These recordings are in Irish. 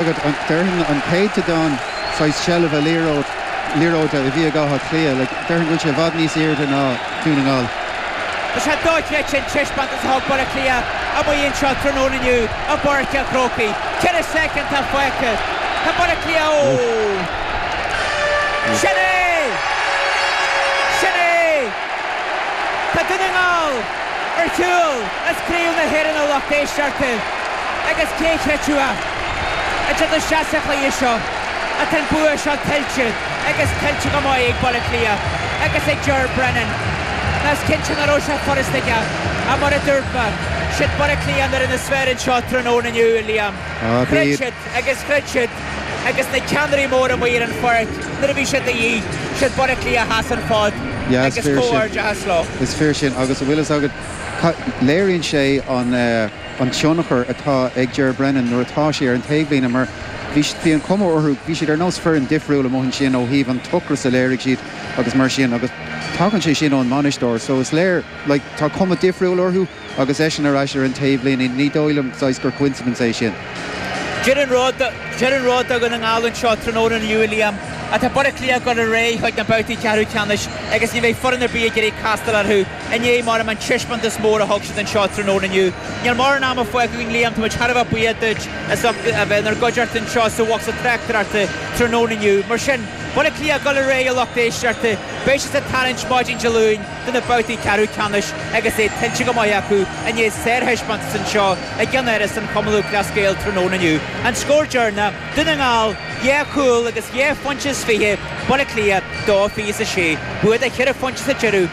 agat, déarfainn, an céatadán saghas seilbhe liathróid, liathróide a bhí ag Átha Cliath, like, déarfainn go bhfuil sé i bhfad níos airde ná Dún na nGall. Tá sé dochreidte an teispeántas a thug Baile Átha Cliath amuigh anseo tráthnóna inniu i bPáirc an Chrócaigh. Ceithre soicind atá fágtha. Tá Baile Átha Cliath ó. Sin é! Sin é! Tá Dún na nGall ar shiúl as Craobh na hÉireann a lucht éisteachta agus cé chreidfeadh. Idir na seastáin chlaímh seo atá an bua seo tuillte agus tuillte go maith ag Baile Átha Cliath agus ag Ger Brennan. Nó is cinnte ná raibh sé furasta ag a, a, mar a dúirt mé, siad Baile Átha Cliath nuair a na sféir anseo tráthnóna inniu, a Liam. Chreid siad agus chreid siad agus na ceannairí móra amuigh ar an pháirc nuair a bhí siad de dhíth, siad Baile Átha Cliath a sheas an fód agus comhghairdeachas leo. Is fíor sin. Agus an bhfuil fhios agat, léiríonn sé an. an tionchar atá ag Ger Brennan nuair atá sé ar an taobhlíne mar bhí bhí an chuma orthu bhí siad ar nós foireann difriúil amuigh ansin ó thaobh an t-ocras a léirigh siad agus mar sin agus tagann sé sin ón mbainisteoir so is léir like tá cuma difriúil orthu agus eisean ar ais ar an taobhlíne ní dóigh liom saghas gur coincidence é sin. Deir an rud deir an rud Dún na nGall anseo tráthnóna inniu a Liam atá Baile Átha Cliath ag dul ar aghaidh chuig na babhtaí ceathrú ceannais agus ní bheidh foireann ar bith ag iarraidh castáil orthu i ndéidh mar a deirim an taispeántas mór a thug siad anseo tráthnóna inniu. Níl mórán ama fágtha againn Liam, táimid thar a bheith buíoch duit as ucht a bheith inár gcuideachta anseo sa bhocsa tráchtaireachta tráthnóna inniu. Mar sin, Baile Átha Cliath go léir a lucht éisteachta, beidh siad sa tarraingt maidin Dé Luain do na babhtaí ceathrú ceannais agus é tuillte go maith acu i ndéidh sárthaispeántas anseo i gceannáras an Chumann Lúthchleas Gael tráthnóna inniu. An scór deireanach, Dún na nGall, dhá chúl agus dhá phointe is fiche, Baile Átha Cliath, dó fiche's a sé, bua de cheithre phointe sa deireadh.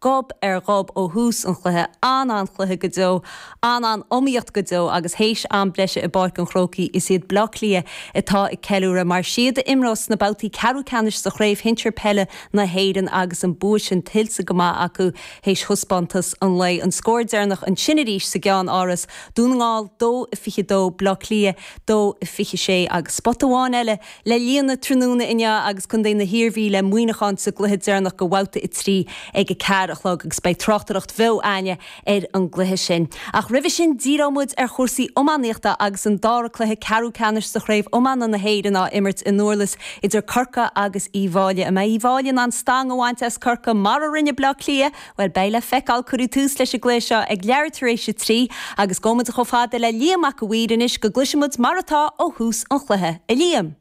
gob ar ghob ó thús an chluiche, an-an-chluiche go deo, an-an-iomaíocht go deo agus théis am breise i bPáirc an Chrócaigh is iad Bleá Cliath atá ag ceiliúradh mar is iad a imreos sna babhtaí ceathrú ceannais sa Chraobh Shinsear Peile na hÉireann agus an bua sin tuillte go maith acu théis thaispeántas an lae. An scór deireanach ansin arís sa gceannáras, Dún na nGall 2-22 Bleá Cliath 2-26 agus spota amháin eile Le líonadh tráthnóna inniu agus casfaidh an Iarmhí le Muineachán sa gcluiche deireanach de Bhabhta 3 ag a ceathair a chlog agus beidh tráchtaireacht bheo againne ar an gcluiche sin. Ach roimhe sin díreoidh muid ar chúrsaí iománaíochta agus an dara cluiche ceathrú ceannais de Chraobh Iomána na hÉireann á imirt i nDurlas idir Corcaigh agus Uí bhFáilí. An mbeidh Uí bhFáilí in ann stang a bhaint as Corcaigh, mar a rinne Bleá Cliath, Bhuel, beidh le feiceáil. Cuireadh tús leis an gcluiche seo ag leathuair tar éis a trí agus gabhfaimid chomh fada le Liam Mac a' Mhaoir anois go gcloisfimid mar atá ó thús an chluiche. A Liam.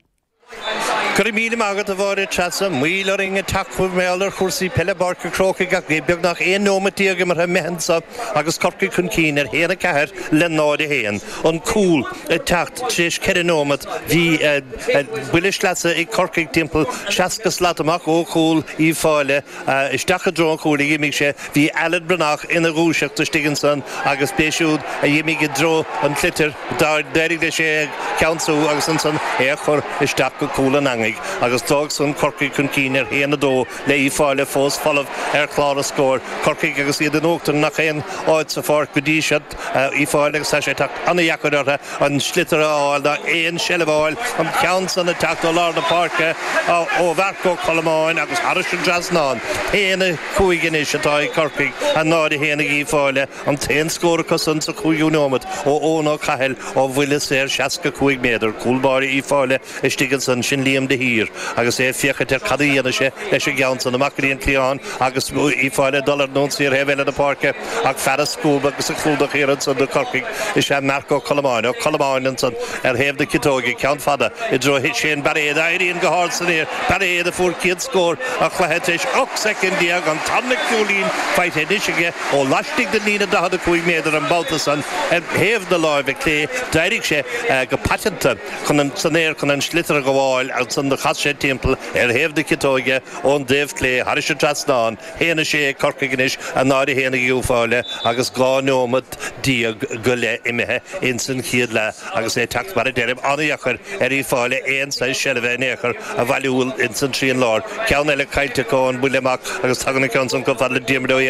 Go raibh míle maith agat, a Mháire Treasa. Moill orainn ag teacht chugaibh mar gheall ar chúrsaí peile i bPáirc an Chrócaigh ach bhí beagnach 11 nóimeat imeartha amuigh anseo agus Corcaigh chun cinn ar a haon a ceathair le 0 a haon. An cúl ag teacht tar éis ceithre nóimeat. Bhí buille sleasa ag Corcaigh timpeall 60 slat amach ó chúl Uíbh Fhailí. Isteach i dtreo an chúil a dh'imigh sé. Bhí Alan Breathnach ina dhúiseacht istigh ansan agus b'é siúd a dh'imigh i dtreo an tsliotair. D'éirigh leis é a cheansú agus ansan é a chur isteach go cúl an eangaigh agus d'fhág san Corcaigh chun cinn ar a haon a dó le Uíbh Fhailí fós folamh ar chlár an scóir. Corcaigh agus iad in uachtar i ngach aon áit sa pháirc go dtí seo. Uíbh Fhailí agus tá sé ag teacht an-deacair orthu an sliotar a fháil ná aon seilbh a fháil, an ceann san ag teacht ó lár na páirce, ó Mharc Ó Colmáin agus thairis an trasnán. 1, 5 anois atá ag Corcaigh, 0, 1 ag Uíbh Fhailí, an t-aon scór acu san sa chúigiú nóimeat ó Eoin Ó Cathail ó bhuille saor 65 méadar, cúl báire Uíbh Fhailí istigh ansan, sin Liam de Hóir agus é ag féachaint ar cad a dhéanfaidh sé leis an gceann san amach go dtí an cliathán. Agus Uíbh Fhailí ag dul ar an ionsaí ar thaobh eile na páirce, ach fear ag scuabadh agus ag clúdach thiar ansan do Chorcaigh, is ea Marc Ó Colmáin, Ó Colmáin ansan, ar thaobh na ciotóige, ceann fada i dtreo Shane Bairéid, a éiríonn go hard san aer, Bairéad a fuair céad scór an chluiche tar éis ocht soicind déag, an tarna cúilín faighte anois aige ó laistigh den líne 45 méadar an babhta san, ar thaobh na láimhe clé, d'éirigh sé go paiteanta san aer chun an sliotar a ghabháil ansan do chas sé timpeall ar thaobh na ciotóige. ón dtaobh clé thairis an trasnán. 1, 6 ag Corcaigh anois, 0, 1 ag Uíbh Fhailí agus dhá nóimeat déag go leith imithe ins an chéad leath agus é ag teacht mar a deirim an-deacair ar Uíbh Fhailí, aon saghas seilbhe in aon chor a bhailiú ins an trian láir, ceann eile caillte acu ón mbuille amach agus tagann an ceann san chomh fada le Diarmuid Ó